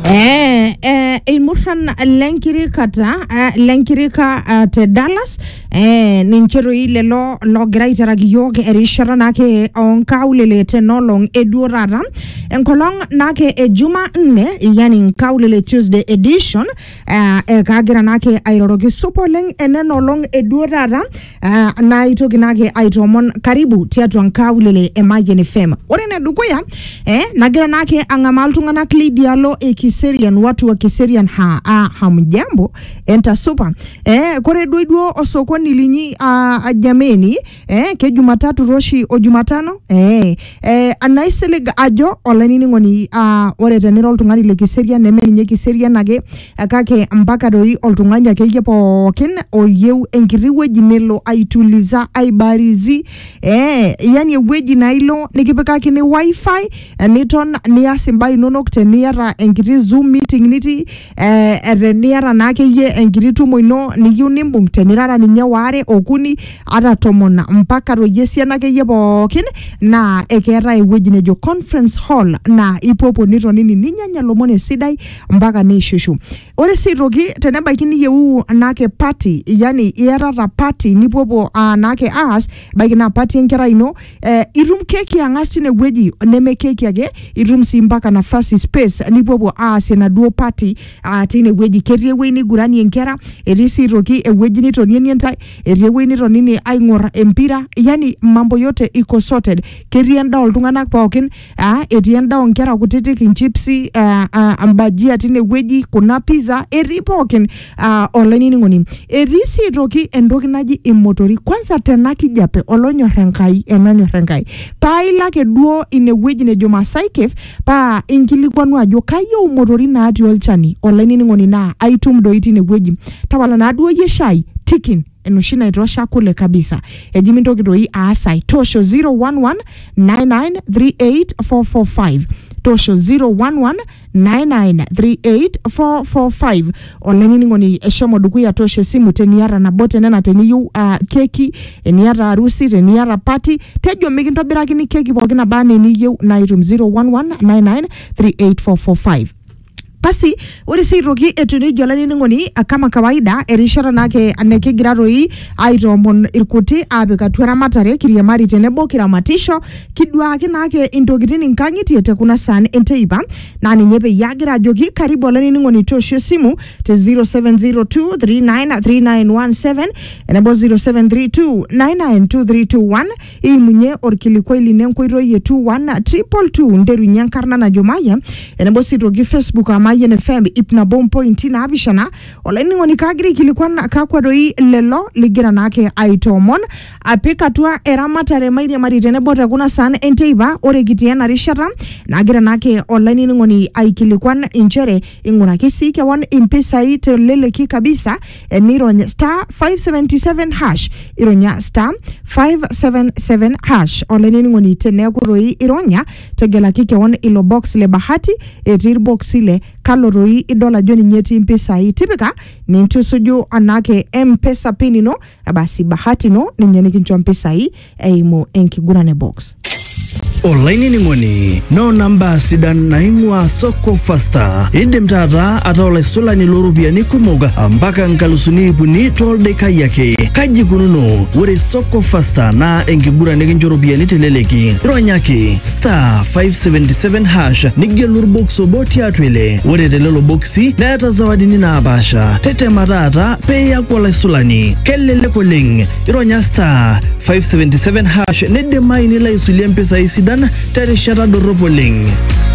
Eh, eh, ilmurran lenkirikata eh, lenkirika eh, te Dallas eh, ninche toi lelo logira aiteraki iyiook erishata naake onkaulele tenolong eduo taata enkolong naake e juma nne yani nkaulele tuesday edition eh, eh, kagira naake airoroki supa oleng enena olong eduo taata Uh, na itoki nake aitoomon karibu tiatua nkaulele e Mayian FM. Ore ene dukuya eh, nagira nake ang'amaa iltung'anak lidialo e Kiserian, watu wa Kiserian ha, ah, hamjambo entasupa eh, kore duo duo osokoni linyi ah, jameni eh, ke Jumatatu roshi o Jumatano eh, Eh, naisilig ajo olainining'oni ah, ore tenira oltung'ani le kiserian neme ninye kiserian ake eh, kake mpaka doi oltung'ani akeyie pookin oyieu enkiti wueji nelo aituliza aibarizi eh, yani ewueji naa ilo nikipikakini wifi eh, niton nias imbaa inonok teniata enkiti zoom meeting nitii eh, eh, teniata naa akeyie enkiti tumo ino niyieu nimbung tenirara ninye waare okuni ata tomon mpaka toyie esiana akeyie pookin naa ekeetae ewueji nejo conference hall naa ipuopuo nitonini ninyanya lomon esidai mpaka niishushu ore sii aitoki tenebaiki niyieu naake party yani iatata party nipuopuo uh, naake aas ebaiki naa party enkerai ino eh, itum keki ang'as tinewueji neme keki ake itum sii mpaka nafasi space nipuopuo aasie enaduo party ah, tinewueji ketii ewueji niguranie nkera etii sii aitoki ewueji nitonienie ntae etii ewueji nitoninie aing'or empira yani mambo yote iko sorted ketii endaa oltung'anak pookin Ah, etii endaa onkera kutitik inchipsi ah, ah, mbajia tinewueji kuna pizza etii pookin ah, olainining'oni etii sii aitoki entoki naji imotori kwanza tena kijape olonyor enkai enanyor enkai paa ilo ake duo inewueji nejo Masai Cave paa inkilikuanu ajo kayieu imotori natii olchani olainining'oni naa aitum doi tinewueji tapala naaduo iyie shai tikin enoshi naitosha kule kabisa eji mintoki doi aas ai toosho 011-9938-445 toosho 011-9938-445 olainining'oni eshomo dukuya toosho esimu teniata nabo tenena teniyieu uh, keki eniata arusi teniata pati tejo mikintobirakini keki pookin naba anaa eniyieu naitum 011-9938-445 basi ore sii aitoki etiu nejia olainining'oni ah, kama kawaida erishata naake nikigira toi aitoomon irkuti aapik atua eramatare kiriamari tenebo kiramatisho kiduaaki naake intokitin inkang'itie te kuna saan enteipa naa ninye peyie agira ajoki karibu olainining'oni toosho esimu te 0702393917 enebo 0732992321 iimunye orkilikuai lino enkoitoi e 21222 nterunye enkarna najo Mayian enebo sii toki Facebook aa Mayian FM ip nabo ompointi naapishana olainining'oni kaagira aikilikuan kakwa doi lelo ligira naake aitoomon apik atua eramatare mairiamari tenebo te kuna saan enteipa ore kitii ena rishata nagira naake olainining'oni aikilikuan inchere ing'uraki sii kewan impisai teleleki kabisa eh, nirony star 577 hash ironya star 577 hash olainining'oni teneeku toi ironya tegelaki kewon ilo box le bahati etii irboksi le kalo toi idol ajo ninye etii impisai tipika nintusuju anake mpesa pin ino eh, basi bahati ino ninye nikincho mpisai eimu enkiguran e box. olainining'oni noona mbaa sidan naing'ua soko fasta indim taata ataa olaisulani looropiyiani kumok mpaka nkalusuni ip uni tooldaikai ake kaji ikununo ore soko fasta naa enkiguran nikincho ropiyiani teleleki ronyaki star 577 hash nigelu orbox obo tiatua ile ore telelo boksi neeta zawadini naapaasha tetema taata peeyaku olaisulani kelelek oleng ironya star 577 hash neidimayu nilo aisulie mpisai sidan terishata dorrop oleng